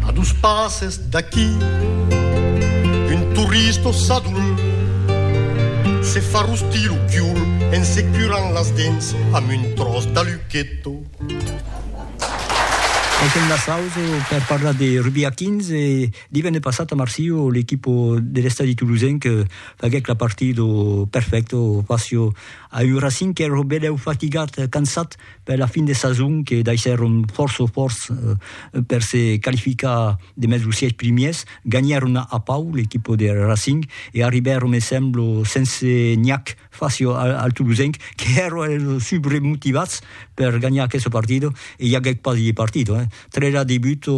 A dos passes d'aquí un turista sadul se fa rostir lo cul en se curant las dents amb un tròç d'aluqueto. Anten Nassauso per parlar de rugbi a 15 e divenne passat a Marsilho l'equipa de l'estadi tolosenc faguèc la partida perfècta faciò a un Racing qu'èra benlèu fatigat, cansat, per la fin de sason que daissèron fòrça fòrç per se qualificar demest los sièis primièrs, ganhèron a Pau l'equipa de Racing e arribèron me semblo sense nhac fàcia al Tolosenc que èra subremotivats per ganhar aquesta partida e i aguèt pas de partida, 3 a 2 buts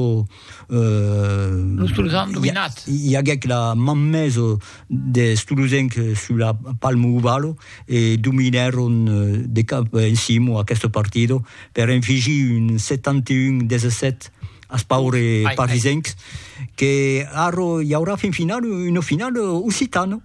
Los Tolosans an dominat. I aguèc la man mesa des Tolosenc sus la Palmo Ovalo e dominèron de cap en cimo aquesta partida per enfigir un 71 17 as paure parisencs que ara i aurà fin finala una finala occitana.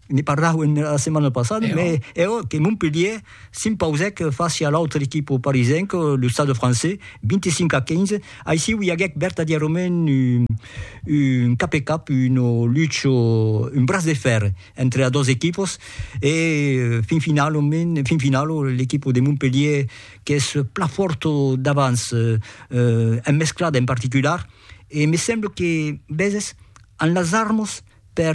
ne parlauen era setmana passada, me eo que Montpellier s'impausèc fàcia l'autre equipe parisenc, lo Stade Français, 25 a 15, aicí ui aguèc vertadièrament un cap e cap, una lucha, un braç de fèrre entre las dos equipes e fin finalament, fin finala l'equipe de Montpellier qu'es plan fòrta davans, en mesclada en particular, e me semble que Bèses an las armas per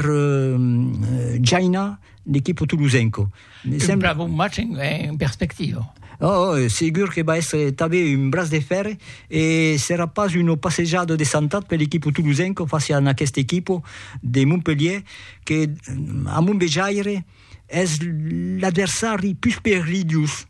jainar l'equipo tolosenco. Me sembla... Un plan bon match en, en perspectiva. Oh, oh, segur que va èstre tanben un braç de fèrre e serà pas una passejada de santat per l'equipo tolosenco fàcia a aquest equipo de Montpelhièr que, a mon vejaire, es l'adversari pus perilhós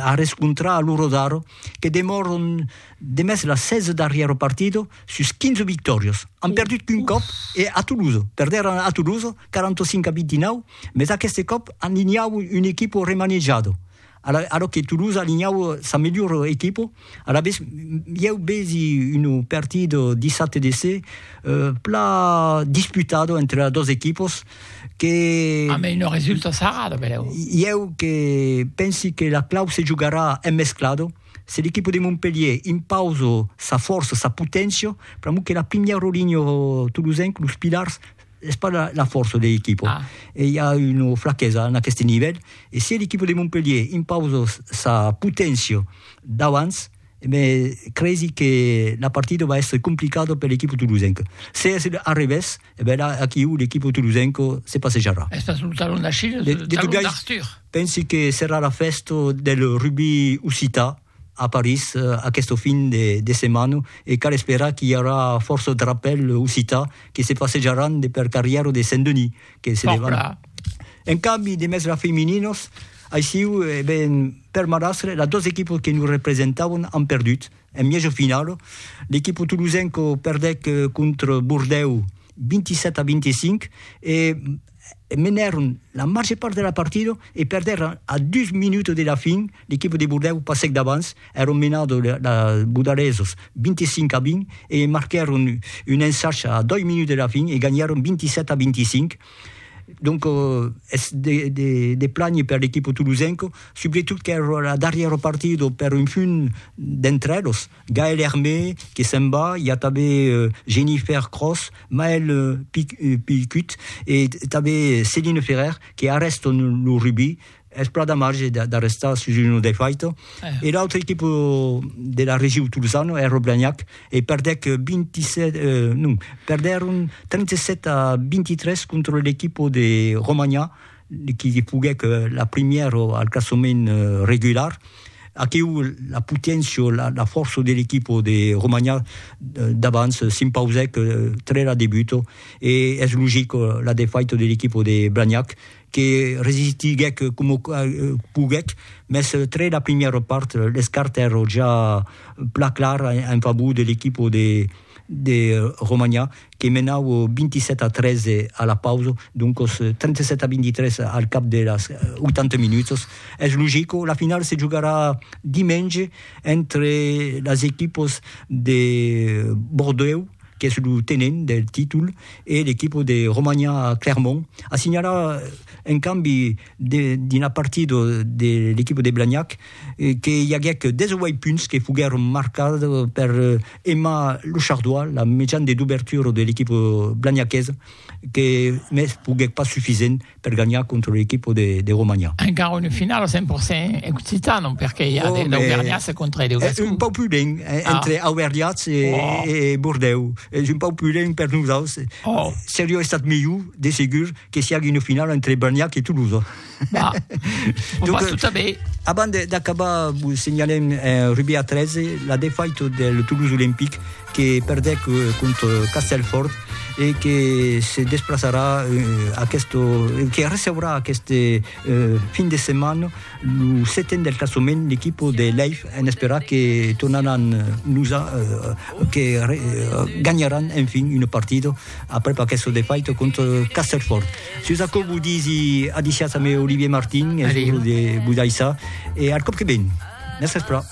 a rescontrar lo Rodaro que demòron demest las 16 darrièro partido sus 15 victòrios. An perdut qu'un còp e a Toulouse, perdèron a Toulouse 45 a 29, mes aqueste còp alinhau un equipo remanejado, a lo que Toulouse alinhau sa melhor equipo, Alavetz, ieu vesi un partit dissabte de se pla disputat entre las dos equipos que... A mei non resulta sarrada, beleu. Ieu que pensi que la clau se jugarà en mesclat, se l'equipo de Montpellier impausa sa fòrça, sa poténcia, pr'amor que la primièra linha tolosenca, los pilars, es pas la, la força de l'equipo. Ah. E hi a una flaquesa en aquest nivèl. E si l'equipo de Montpellier impausa sa poténcia d'abans, me cresi que la partida va èstre complicada per l'equipo tolosenca. Se es a revés, e ben là, aquiu, l'equipo tolosenca se passejarà. Es pas un talon d'Achille, de, de, de talon d'Arthur. Pensi que serà la fèsta del rugby occità, a París aquesta fin de setmana e cal esperar qu'i aurà fòrça drapèl occità que se passejaràn de per carrièra de Saint-Denis que se levan. En cambi de mèstra femininas, aissiu e ben per Marastre, las dos equipas que nos representavan an perdut en mièja finala, l'equipa tolosenca perdèc contra Bordèu, 27 a 25 e menèron la màger part de la partida e perdèron a dus minuts de la fin, l'equipa de Bordèu passèc davans, èron menadors los bodaresos 25 a 20 e marquèron un ensach a doi minuts de la fin e ganhèron 27 a 25. Donc es de planher per l'equipa tolosenca, subretot qu'èra la darrièra partida per un punt d'entre eles. Gaël Hermé que se'n va, i a tanben Jennifer Cross, Maël Pilcut e tanben Céline Ferrer que arrèstan lo rugbi, es plan damatge d'arrestar sus una defaita, e l'autra equipa de la region tolosana, Air Blagnac, e perdèc 27, non, perdèron 37 a 23 contra l'equipa de Romanha, qui li foguèc la primièra al classament regular, aquiu la poténcia, la fòrça de l'equipa de Romanha d'abans s'impausèc tre la debuta e es logic la defaita de l'equipa de Blagnac que resistiguèc coma poguèc, mès tre la primièra part l'escart èra ja plan clar en favor de l'equipa de Romanha que menau 27 a 13 a la pausa, doncos 37 a 23 al cap de las 80 minutas. Es logico, la finala se jogarà dimenge entre las equipas de Bordèu, qu'es lo tenent del títol, e l'equipa de Romania Clermont. A signalar, en cambi, dina partida de l'equipa de Blagnac que i aguèc 18 punts que foguèron marcats per Emma Lechardois, la mejana de dobertura de l'equipa blagnaquesa, que mès foguèc pas sufisent per ganhar contra l'equipa de Romagna. Encara una finala 100% occitana perque i a de l'Auvergnassa contra de Gascon. Un pauc pudent entre Auvergnats e Bordèu, es un pauc pudent per nosaus, seriá estat melhor de segur. que si hagi una finala entre Berniac e Toulouse. Bah, on Donc, va tout à bé. Avant d'acabar, vous signalem un rugby à 13, la défaite de Toulouse Olympique que perdec euh, contre Castelfort et que se desplaçarà euh, aquest, euh, que receurà aquest euh, fin de setmana le setèn del classement l'equip de Leif en esperar que tornaran nous a, euh, que re, euh, ganharan enfin une partida aprèp aqueste defaito contra Castelfòrt. Sus aquò vos disi adiciatz a me Olivier Martin, es lo de Budaissa, e al còp que ven! Mès espra!